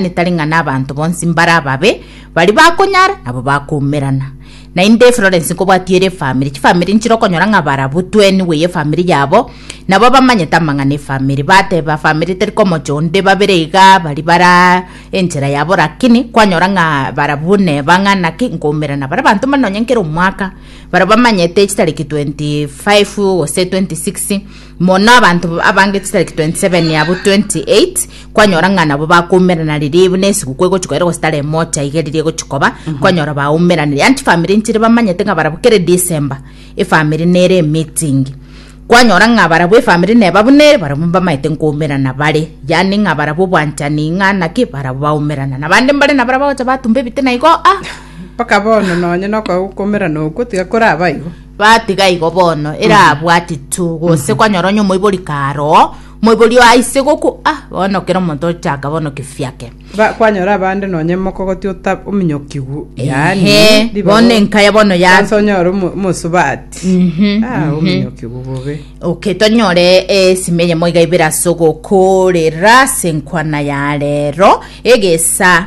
Onye tari ng'a nabanto bonsi mbare ababe, baria bakonyara nabo bakoumerana. Naende Florence nkobwatie ere efamiri, chifamiri nchire okonyora ng'a barabwo tweni bweyia efamiri yabo, nabo bamanyete amang'ana efamiri, bateba famiri teri komocha onde, babere iga baria bara enchera yabo lakini kwanyora ng'a barabwo neba ng'a naki nkoumerana. Baria abanto mbare nonye nkera omwaka, baria bamanyete chitariki 25 gose 26, Mono abanto abange chitari 27 abwo 28 kwanyora ng'a nabo bakoumeranari ribu na esiguku egochi koera gose tari emocha iga riria egochi koba kwanyora baumeranire anti famiri nchire bamanyete ng'a barabwo kere December efamiri nere emeeting kwanyora ng'a barabwo efamiri neba buna ere barabwo mbamaete nkoumerana bare yaani ng'a barabwo obwanchani ng'a naki barabwo baumerana na bande mbare na barabwo bagocha batumba ebite na igo ah mpaka bono nonye nokogokomerana okwo tiga koraba igo Gatiga igo bono, erabwati tu, gose kwanyora onye omoibori karoo, omoibori oo aise goku, ah, bono kera omonto ochaka bono kifiake. Ba- kwanyora abande nonye mokogoti ota ominyokigwu yaani Ehe, ribaga- bono enkaya bono ya Kwanza onyore omo- omosubati Mhm, Ah, mhm. ominyokigwu bobe Okay, tonyore esime eyemo iga ibere ase ogokorera ase enkwana ya rero egesa